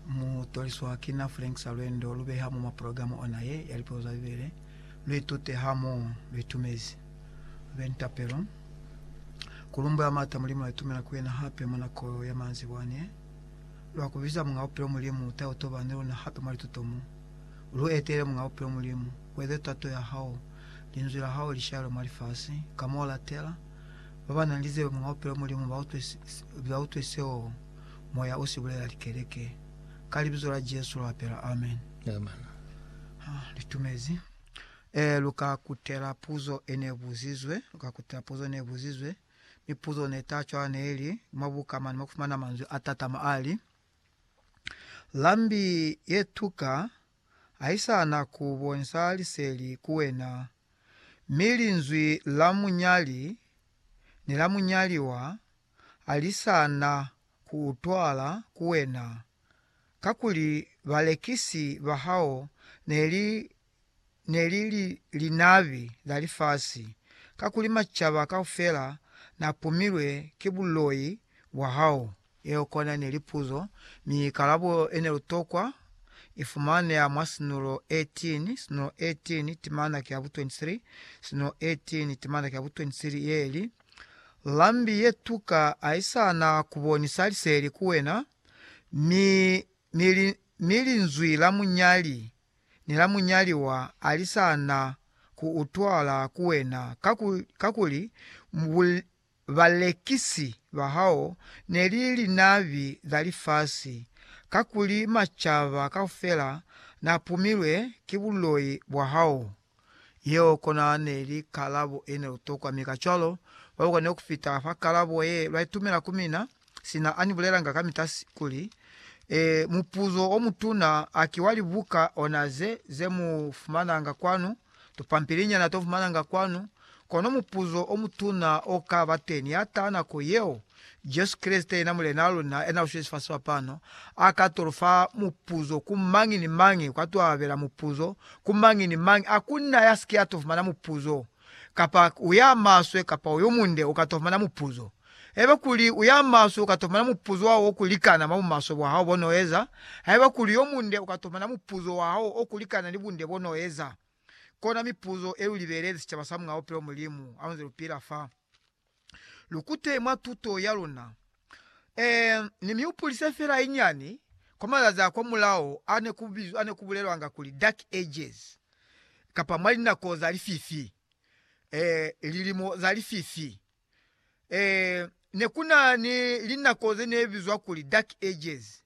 Mu toliswa ki na Frank sa lwendo lu beha mwa programa ona ye ya lipego za Bibele. Lu itute ha mo lu itumezi. Lu be ni tapelo ku lumbula mata Mulimu a itumela ku yena hape mwa nako ya manzibwa ne. Lu a ku biza Muñ'a Bupilo Mulimu ta yo toba ni luna hape mwa lituto mo. Lu etele Muñ'a Bupilo Mulimu, u eze tato ya hao, Linzwi la hao li shalwe mwa lifasi ka mo u latela. Ba ba na ni lizebe Muñ'a Bupilo Mulimu ba utwe seo. Moya o si bulela likeleke. Ka Libizo la Jesu lu apela. Amen. Amen. Ha, li tumezi. E, lu ka kutela puzo e ne buzizwe, lu ka kutela puzo ne buzizwe, mi puzo ne ta cwala ne li, Mwa buka mane mwa ku fumana manzwi a tatama a li, Lambi ye tuka ha i sa na ku bonisa liseli ku wena, mi linzwi la munyali ni la munyaliwa ha li sa na ku utwala ku wena, kakuli balekisi ba hao ne li ne li linabi la lifasi, kakuli macaba kaufela na pumilwe ki buloi bwa hao. Yeo kona ne li puzo, mi kalabo ye ne lu tokwa i fumaneha mwa Sinulo 18, Sinulo 18 timana ki ya bu 23, Sinulo 18 timana ki ya bu 23, ye li, Lambi ye tuka ha i sa na ku bonisa liseli ku wena, mi, mi, li, mi linzwi la munyali ni la munyaliwa ha li sa na ku utwala ku wena, kakuli, kakuli bu, balekisi ba hao ne li linabi za lifasi, kakuli macaba kaufela na pumilwe ki buloi bwa hao. Yeo kona neli kalabo ene lutokwa, mi kacwalo, baluka ne kufita fa kalabo ye lwaitumela ku mina, sina ani bulelanga kamita kuli, E, mupuzo omutuna a ki wa libuka ona ze, ze mu fumananga kwanu, tupampilinyana to fumananga kwanu, Kono mupuzo o mutuna o ka ba teni ya taha nako yeo. Jesu Kreste, yena Mulenaa luna yena uswile sifasi fa pano, a ka to lu fa mupuzo ku mañi ni mañi, kwa to abela mupuzo ku mañi ni mañi. A ku na ya si ke ya to fumana mupuzo, kapa u ya maswe kapa u yo munde u ka to fumana mupuzo. Haiba kuli u ya maswe, u ka to fumana mupuzo wa hao o ku likana mwa bumaswe bwa hao bo n'o eza, haiba kuli yo munde, u ka to fumana mupuzo wa hao o ku likana ni bunde bo n'o eza. Kona mipuzo e lu libelezi sicaba sa mwa bupilo Mulimu a nze lu pila fa. Lu kute mwa tuto ya luna. Ee, ni mi hupulise fela inyani kwa mazazi a kwa mulao a ne ku bizwa, a ne ku bulelwanga kuli Dark Ages, kapa mwa linako za lififi, ee, lilimo za lififi. Ee, ne ku na ni linako ze ne bizwa kuli Dark Ages,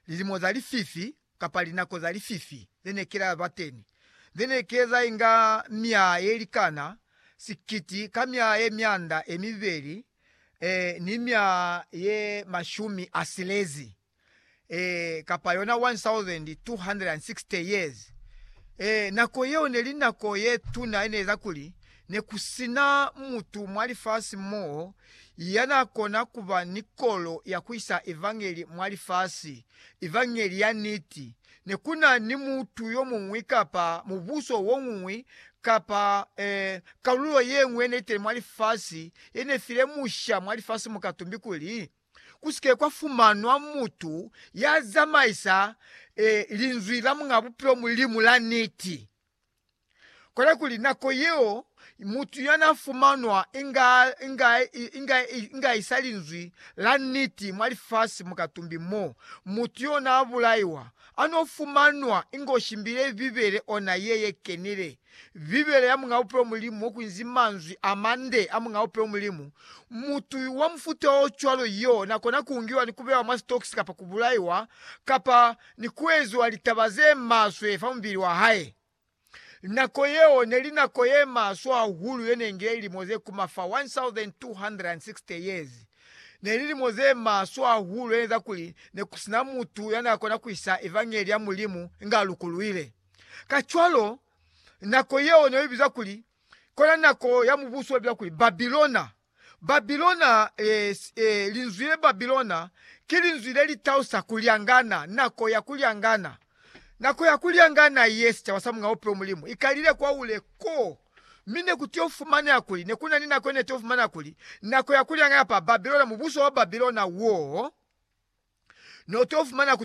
lilimo za lififi, kapa linako za lififi, ze ne kela ba teni, ze ne keza inga myaha ye likana sikiti ka myaha ye myanda ye mibeli, ee, ni myaha ye mashumi a silezi. ee, kapa yona 1,260 years, ee, nako yeo neli nako yetuna yeneeza kuli nekusina mutu mwa lifasi mo yanakona kuba ni kolo ya kuisa Evangeli mwa lifasi, Evangeli ya niti. Nekuna ni mutu yomuñwi kapa mubuso woñwi kapa, ee, kalulo yeñwi yeneitele mwa lifasi yenefile musha mwa lifasi mukatumbi kuli, ku si ke kwa fumanwa mutu ya zamaisa e, Linzwi la Muñ'a Bupilo Mulimu la niti. Kona kuli nako yeo mutu ya n'a fumanwa inga, inga, inga, inga isa Linzwi la niti mwa lifasi mu katumbi mo, mutu y'o n'a bulaiwa, a n'o fumanwa inga o shimbile Bibele ona ye ye kenile Bibele ya Muñ'a Upe wa Mulimu mo ku nzi manzwi a mande a Muñ'a Upe wa Mulimu, Mutu wa mufuta o cwalo y'o n'a kona ku ngiwa ni ku bewa mwa sitokisi kapa ku bulaiwa, kapa ni ku eziwa litaba ze maswe fa mubili wa hae. Nako yeo ne li nako ye maswe hahulu ye ne ngile lilimo ze kuma fa 1,260 years. Ne lilimo ze maswe hahulu ye n'eza kuli ne ku si na mutu ya n'a kona ku isa evangeli ya Mulimu nga lukuluile. Kacwalo, nako yeo ne i bizwa kuli kona nako ya mubuso wa bizwa kuli Babilona. Babilona, e, e, linzwi le Babilona ki linzwi le li tausa ku lyangana, nako ya ku lyangana. Nako ya ku lyangana ye sicaba sa mung'a upe wa Mulimu i kalile kwahule ko. Mi ne ku t'o fumaneha kuli ne ku na ni nako ye ne t'o fumaneha kuli nako ya ku lyangana pa Babilona, mubuso wa Babilona wo n'o t'o fumaneha ku